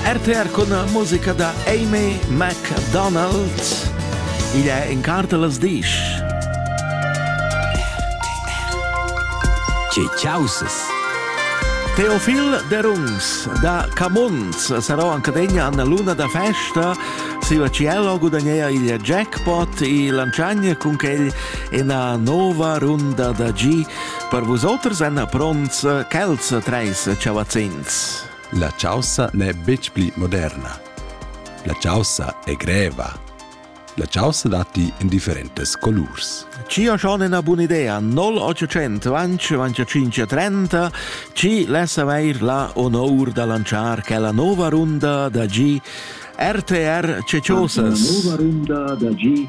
RTR con musica da Amy McDonald. Igl è in cartelas disch. Ce ciauses. Teofil Derungs da Camuns sarò anche degna alla luna da festa si Cielo gudagnea il jackpot e lanciagne con quel una nuova runda da G Per vusoters èn pronts quels treis chavazzins. La chaussa n'è betg pli moderna. La chaussa è greva. La chaussa datti in differentes colurs. Ci ha schon una buona idea, 0800 25 30, ci lass avair la onor da lanciar quella nuova runda da G RTR Ceciosas. La nuova runda da G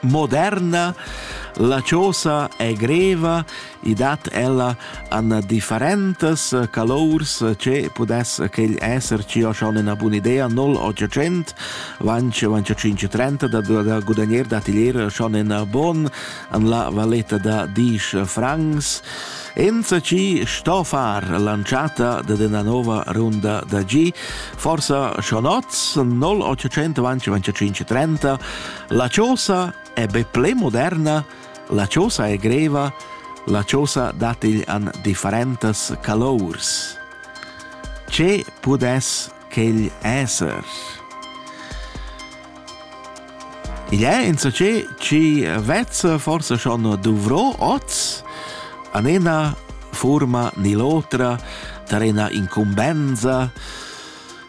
moderna, la chosa è greva, i dat ella an differentas calours che pudess quel esser ci o schon una buona idea 0800 vanch vanch 530 da, da, da gudagnere da atelier schon in bon an la valetta da 10 francs Enza ci sto far lanciata de una nuova runda da G, forse Schonotz 0800 vanch 530 La chosa è be ple moderna, la chosa è greva, la chosa dat igl an differentas calours. Ce pudess quegl esser? Igl è insacé ci vezza forse schon dovrò oz, an ena forma ni l'otra, tar ena incumbenza,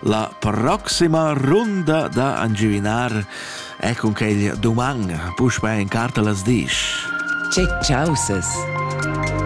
La proxima runda da angiuvinar è cun quel doman, puspè in carta las disch. Che chausas!